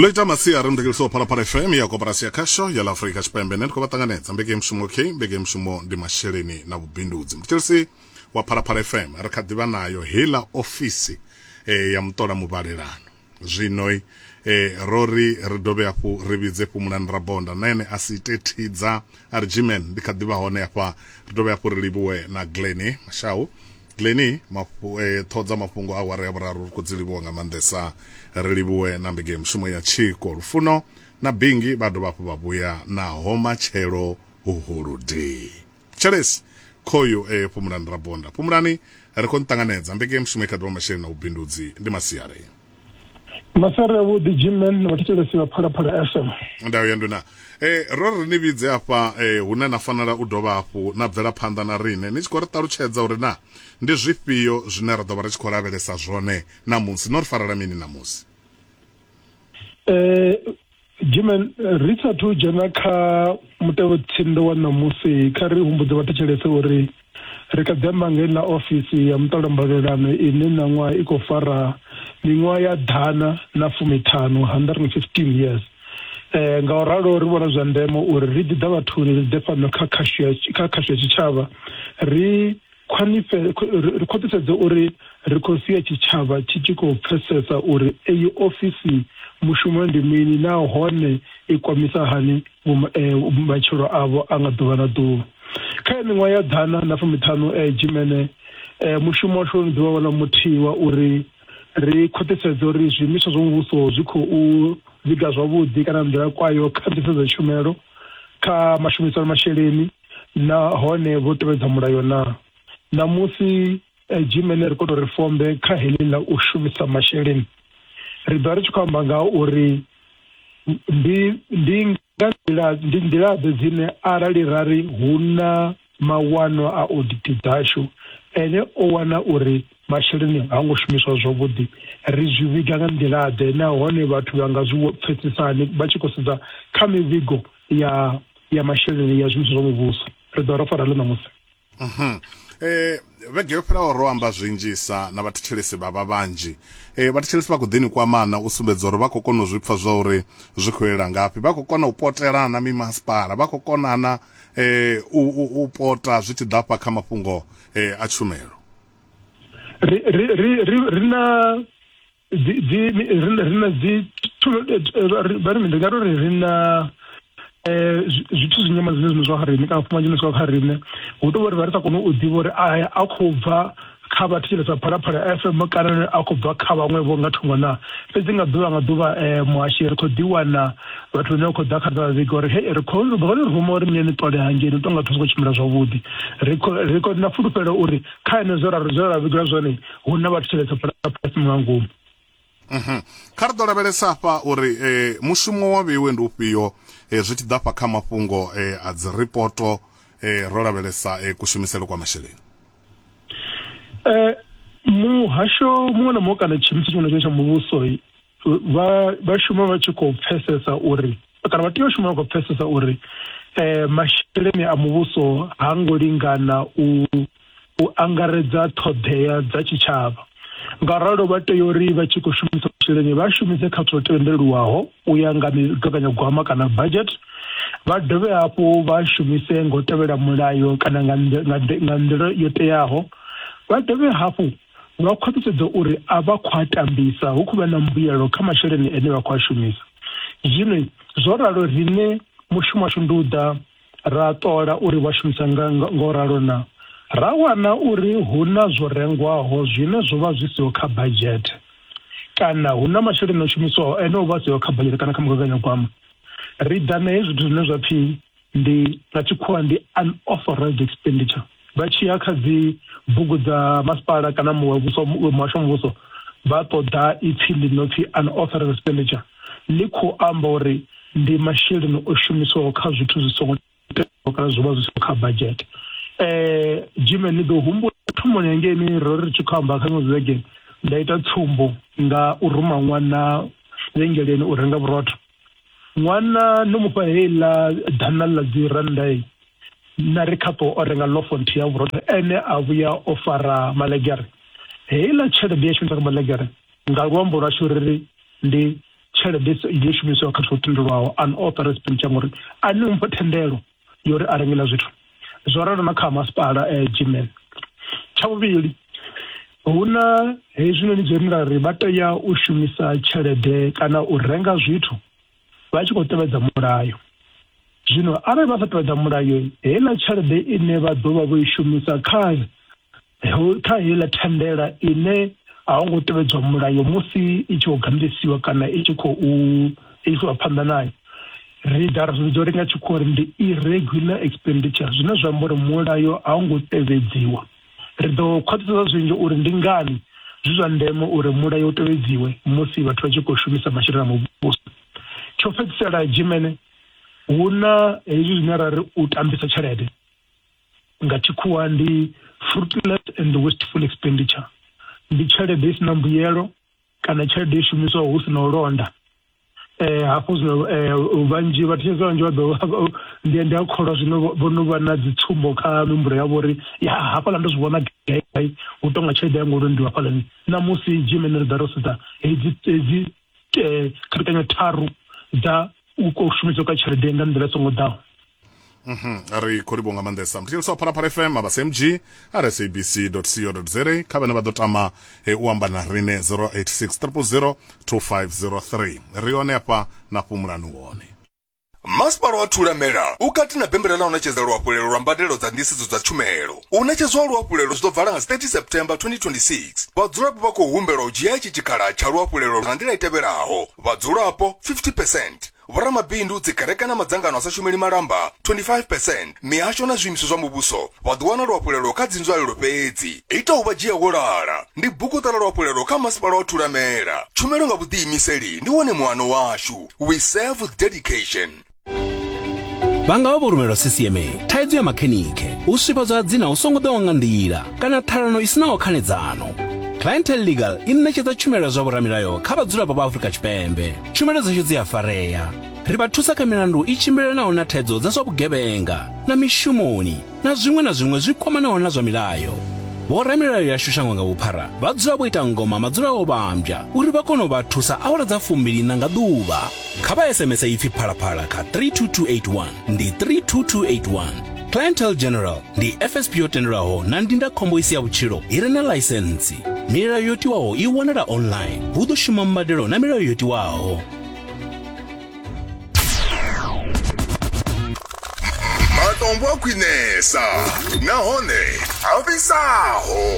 ḽo ita masiari mudekeliso wa phalaphala fm ya koporasi ya khasho ya ḽa afurika tshipembe ne ndi khou vha ṱanganedza mbeke mushumo k mbeke mushumo ndi masheleni na vhubindudzi mudekeliso wa phalaphala fm ri kha ḓivha nayo heiḽa ofisi e, ya muṱola muvhalelano zwino e, eh, ro ri ri dovhe hafhu ri vhidze fhumulani rabonda na ene a si ite thidza a ri jimen ndi kha ḓivha hone hafha ri dovhe hafhu ri livhuwe na gleni mashau Glenny mafhu, eh, ṱhoho dza mafhungo a awara ya vhuraru ri khou dzi livhuwa nga maanḓesa ri livhuwe na mbege ya mushumo ya tshiko lufuno na bingi vha dovha hafhu vha vhuya naho matshelo hu holodei tshelesi khoyu eh, phumulani rabonda phumulani ri khou nṱanganedza mbege ya mushumo i kha ḓuvha masheleni na vhubindudzi ndi masiari masere avhuḓi jimman na vhathetshelesi vha phalaphala fm ndau ya nduna eh ro ri ni vhidze afha eh hune na fanela u dovha hafhu na bvela phanḓa na rine ni tshi khou ri ṱalutshedza uri na ndi zwifhio zwine ra ḓo vha ri tshi khou lavhelesa zwone ṋamusi no ri farela mini ṋamusi eh jimen ri sathu dzhena kha mutevhe tsinde wa ṋamusi kha ri humbudze vhathetshelese uri ri kha ḓi amba ngei na ofisi ya muṱolo mbalelano ine ṋaṅwaha i khou fara miṅwaha ya ḓana na fumiṱhanu 115 years um nga u ralo ri vhona zwa ndeme uri ri ḓi ḓa vhathuni ri ḓe fhano kha khashu ya tshitshavha ri Ri khwaṱhisedze uri ri khou sia tshitshavha tshi tshi khou pfesesa uri eyi ofisi mushumo ndi mini nahone i kwamisa hani matshilo avho a nga ḓuvha na ḓuvha. Kha ya miṅwaha ya ḓana na fumiṱhanu Dzhimene, mushumo washu wo no ḓi vha wone muthihi wa uri ri khwaṱhisedze uri zwiimiswa zwa muvhuso zwi khou vhiga zwavhuḓi kana nḓila kwayo kha nḓisedzo ya tshumelo, kha mashumisele a masheleni, na hone vho tevhedza mulayo na ṋamusi eh, gmail ri koto ri fombe kha heḽi ḽa u shumisa masheleni ri ḓo ri tshi khou amba nga uri ndi ndi nga nḓila ndi nḓila ḓe dzine arali ra ri hu na mawanwa a audit dzashu ene o wana uri masheleni ha ngo shumiswa zwavhuḓi ri zwi vhiga nga nḓila ḓe nahone vhathu vha nga zwi pfesesani vha tshi khou sedza kha mivhigo ya ya masheleni ya zwiimiswa zwa muvhuso ri ḓo rafara ḽo ṋamusi mhm. eh vhege yo fhelaho ro amba zwinzhisa na vhathetshelesi vha vha vhanzhi eh vhathetshelesi vha khou ḓini kwamana u sumbedza uri vha khou kona u zwi pfa zwa uri zwi khou elela ngafhi vha khou kona u potelana mimasipala vha khou konana eh u, u, u pota zwi tshi ḓa fha kha mafhungo eh a tshumelo ri ri ri ri na dzi dzi ri na dzi vha ri ndi nga tori ri na um zwithu zwi nyama zwine zwine zwa kha riṋe kana fumanje zwa kha riṋe hu tou vha ri vha ri sa koni u ḓivha uri aya a khou bva kha vha thetshelesa phalaphala f m kana a khou bva kha vhaṅwe vho nga thungo na fhedzi nga ḓuvha nga ḓuvha um muhashi ri khou ḓi wana vhathu vhane vha khou ḓa kha ri vha vhiga uri he ri khou ri khou ni ruma uri niye ni ṱole hangei ni tonga zwithu zwi khou tshimbila zwavhuḓi ri khou ri khou na fulufhelo uri kha henezwo ra zwo ra vhigela zwone hu na vhathu tshelede fhala fhasi nga ngomu mhm. kha ri ḓo lavhelesa afha uri eh, mushumo wa vheiwe ndi ufhio eh, zwi tshi ḓa fha kha mafhungo eh, a dzi ripoto eh, ro lavhelesa eh, kushumisele kwa masheleni eh, muhasho muṅwe na muṅwe kana tshiimiswa tshiṅwe na tshiṅwe tsha muvhuso vha vha shuma vha tshi khou pfesesa uri kana vha tea u shuma vha khou pfesesa uri eh masheleni a muvhuso ha ngo lingana u u angaredza ṱhoḓea dza tshitshavha nga ralo vha tea uri vha tshi khou shumisa masheleni vha shumise kha zwo tendelwaho u ya nga migaganyagwama kana budget vha dovhe hafhu vha shumise ngo tevhela mulayo kana nga nḓila yo teaho vha dovhe hafhu nga u khwaṱhisedza uri a vha khou a tambisa hu khou vha na mbuyelo kha masheleni ane vha khou a shumisa zwino zwo ralo riṋe mushumo washu ndi u ḓa ra ṱola uri vha shumisa nga ngo ralo na ra wana uri hu na zwo rengwaho zwine zwo vha zwi siho kha badzhete kana hu na masheleni o shumiswaho ene o vha siho kha badzhete kana kha mugaganyagwama ri ḓa na hezwi zwithu zwine zwa pfhi ndi nga tshikhuwa ndi unauthorized expenditure vha tshi ya kha dzi bugu dza masipala kana muvhuso muhasho muvhuso vha ṱoḓa ipfhi ḽi no pfhi unauthorized expenditure ḽi khou amba uri ndi masheleni o shumiswaho kha zwithu zwi songo teaho kana zwi vha zwi songo kha budget um jime ni ḓo humbula thomoni hangeini ro ri tshi khou amba kha ṅwe vhege nda ita tsumbo nga u ruma ṅwana vhengeleni u renga vhurotho ṅwana no mufha heiḽa ḓana ḽa dzi rannda na ri khapo o renga lofo nthihi ya vhurotho ene a vhuya o fara malegere heiḽa tshelede ya shumisa kha malegere nga luambo lwashu ri ri ndi tshelede yo shumiswa kha zwithu tendelwaho an author expenditure ngori a ni mpha thendelo yo ri a rengela zwithu zwo ralo na kha masipala eh, gmail tsha vhuvhili hu na hezwinoni zwo ri ri vha tea u shumisa tshelede kana u renga zwithu vha tshi khou tevhedza mulayo zwino arali vha sa tevhedza mulayo heiḽa tshelede ine vha ḓo vha vho i shumisa kha kha heiḽa thandela ine a ho ngo tevhedzwa mulayo musi i tshi khou gandisiwa kana i tshi khou isiwa phanḓa nayo ri ḓa ri vhidza uri nga tshikhuwa uri ndi irregular expenditure zwine zwa amba uri mulayo a hu ngo tevhedziwa ri ḓo khwaṱhisedza zwinzhi uri ndi ngani zwi zwa ndeme uri mulayo u tevhedziwe musi vhathu vha tshi khou shumisa masheleni a muvhuso tsho fhedzisela dzimene hu na hezwi zwine ra ri u tambisa tshelede nga tshikhuwa ndi fruitless and wasteful expenditure ndi tshelede i sina mbuyelo kana tshelede i shumiswaho hu sina u londa eh hafho zwino eh, vhanzhi vhathu tshese vhanzhi vha ḓo ndi ndi a kholwa zwino vho no vha na dzi tsumbo kha mihumbulo yavho uri ya hafhaḽa ndo zwi vhona gai hu tonga tshelede ya ngolo ndi hafhaḽani na musi dzhimene ri ḓa ro sedza hedzi hedzi eh, khapekanyo tharu dza u shumiswa kwa tshelede nga nḓila songo ḓaho mhm. a ri khou livho nga maanḓesa mthetshelisi wa phalaphala fm abasmg rsabc co za kha vhane vha ḓo tama e, u amba na rine 086 000 2503 ri hone afha na fhumulani wone Masipala wa Thulamela u kati na bembela ḽa u ṋetshedza luhafhulelo lwa mbadelo dza nḓisedzo dza tshumelo. U ṋetshedzwa ha luhafhulelo zwi ḓo vala nga 30 September 2026. Vhadzulapo vha khou humbelwa u dzhia itshi tshikhala tsha luhafhulelo nga nḓila i tevhelaho, vhadzulapo 50 percent, vhoramabindu, dzikereke na madzangano a sa shumeli malamba 25 percent, mihasho na zwiimiswa zwa muvhuso vha ḓo wana luhafhulelo kha dzinzwalelo fhedzi. Ita u vha dzhia wo lala ndi buguṱa ḽa luhafhulelo kha Masipala wa Thulamela. Tshumelo nga vhuḓiimiseli ndi wone muano washu. we serve with dedication vha nga vha vho rumelwa ccma thaidzo ya makhenikhe u swifhadzwa ha dzina hu songo ḓaho nga nḓila kana ṱhalano i sinaho khanedzano clientele legal i ṋetshedza tshumelo ya zwa vhoramilayo kha vhadzulapo vha afrika tshipembe tshumelo dzashu dzi a farea ri vha thusa kha milandu i tshimbilelanaho na thaidzo dza zwa vhugevhenga na mishumoni na zwiṅwe na zwiṅwe zwi kwamanaho na zwa milayo vhoramilayo yashu shango nga vhuphara vha dzula vho ita ngoma madzula o vhambya uri vha kone u vha thusa awara dza fumbili na nga ḓuvha kha vha sms ipfi phalaphala kha 32281 ndi 32281 clientel general ndi fsp yo tendelwaho na ndindakhombo isi ya vhutshilo i re na ḽaisentsi milayo yo tiwaho i wanala online hu ḓo shuma mbadelo na milayo yo tiwaho matombo a khwinesa nahone a fhisaho